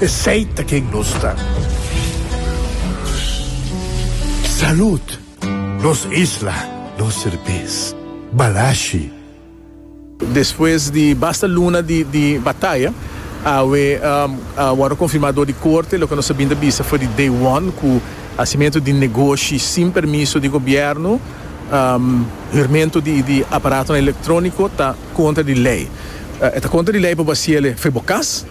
Esey ta ken nos ta. Salud! Nos isla, nos serbes. Balashi. Despues di basta luna di bataya awe a wordo confirma door di corte loke nos a bin ta bisa for di day one cu hacimento di negoshi sin permiso di gobierno, hurmento di aparatonan electronico ta contra di ley. E ta contra di ley pa bo haciele for bo cas.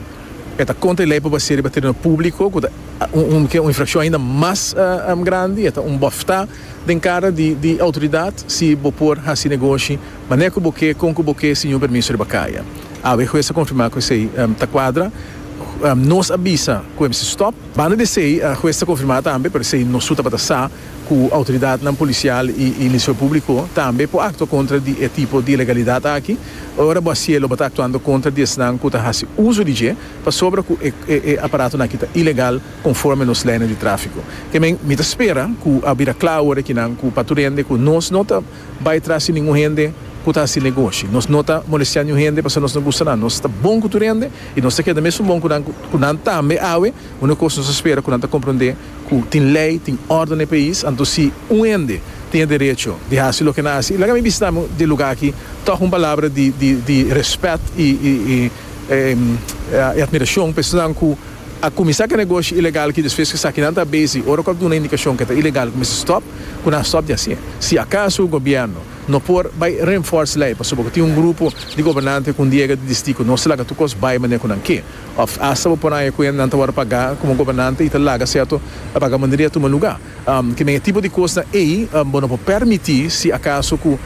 E ta kontra e lei pa basea riba tereno públiko, ku ta un ke un infrakshon ainda mas grandi. E ta un bòftá den kara di outoridat si bo por hasi negoshi manera ku bo ke, kon ku bo ke, sin yun permiso riba kaya. Awe e hues a konfirmá ku esei ta kuadra. Nos a bisa ku e mester stòp. Banda di esei e hues ta konfirmá tambe, pero esei no su tabata sa, ku outoridatnan polisial i Ministerio Públiko tambe por aktua kontra di e tipo di ilegalidat aki. Ora bo a sié lo bo ta aktuando kontra di esnan ku ta hasi uso di dje, pasobra ku e e aparatonan aki ta ilegal konforme nos leinan di tráfiko. Te men mi ta spera ku a bira kla ora kinan ku pa tur hende ku nos no ta bai tras di ningun hende ku ta hasi negoshi. Nos no ta molestiá niun hende pasobra nos no gusta nan. Nos ta bon ku tur hende i nos ta keda mesun bon ku nan ku nan tambe awe. Unu kos nos a spera ku nan ta komprondé. Cu tin ley, tin orde na e pais, anto si un hende tin e derecho di haci loke na haci, laga mi bisita mi di e lugar aki toch un palabra di di di respet y y y y admiracion pa esnan cu a cuminsa cu e negoshi ilegal aki despues cu esaki nan ta busy, ora cu a duna indicacion cu e ta ilegal, cu mester stop, cu nan stop di haci. Si acaso gobierno no por bay reinforce ley pasobra cu tin un grupo di gobernante cu un diega di disiti cu no ta laga tur cos bay manera cu nan ke, Of asta bo por haña ku e nan ta wòrdu pagá komo gobernante i ta laga sèrto vagamunderia tuma lugá. Ki den e tipo di kosnan ei bo no por pèrmití si akaso ku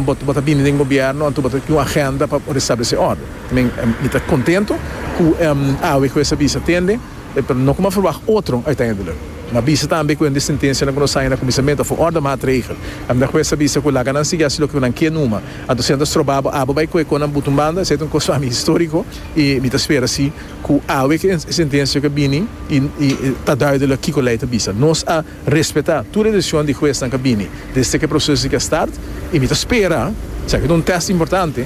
bo ta bini den gobièrnu anto bo ta tin un agenda pa restablesé òrdu. Men, mi ta kontentu ku awe ku esa bisa tende, pero no kuma verwagt otro uiteindelijk. Mi a bisa tambe ku hende sentensianan ku nos haña na kuminsamentu a for òrdu maatregel. Mi ta kuesa bisa ku laga nan sigui hasi loke nan ke numa. Anto si nan ta stroba bo, abo bai ku e konan butu un banda, esei ta un kos pa mi históriko. I mi ta spera si ku awe ku e sentensia ka bini i ta duidelik kiko lei ta bisa. Nos a respetá tur e desishon di huesnan ka bini desde ku e proseso di ke start i mi ta spera, esaki ta un test importante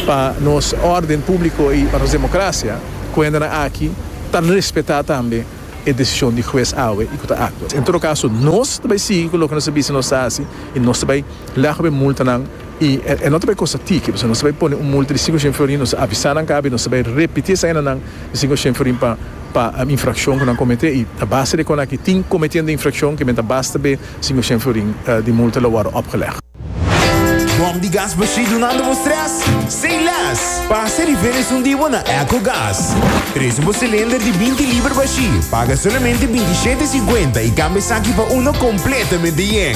pa nos órden públiko i pa nos demokrasia, ku hendenan aki ta respetá tambe e desishon di hues awe i ku ta aktua. En todo kaso nos ta bai sigui ku loke nos a bisa nos ta hasi i nos ta bai lègba e multanan I e no ta bay cosa tiki, pasobra nos ta bay pone un multa di cinco shen florin, nos ta avisa nan kabi, nos ta bay repiti esa hendanan di cinco shen florin pa pa infraccion cu nan comete, i a base di econaki tin cometiendo infraccion ke men ta basta be cinco shen florin di multa lo wordo opgeleg. Bom di gas bashí dunando bo stress? Say less! Pasa riba esun di bo na Echo Gas. Trece bo cilinder di binti liber bashí, paga solamente binti shete cincuenta i cambia esaki pa uno completamente yen.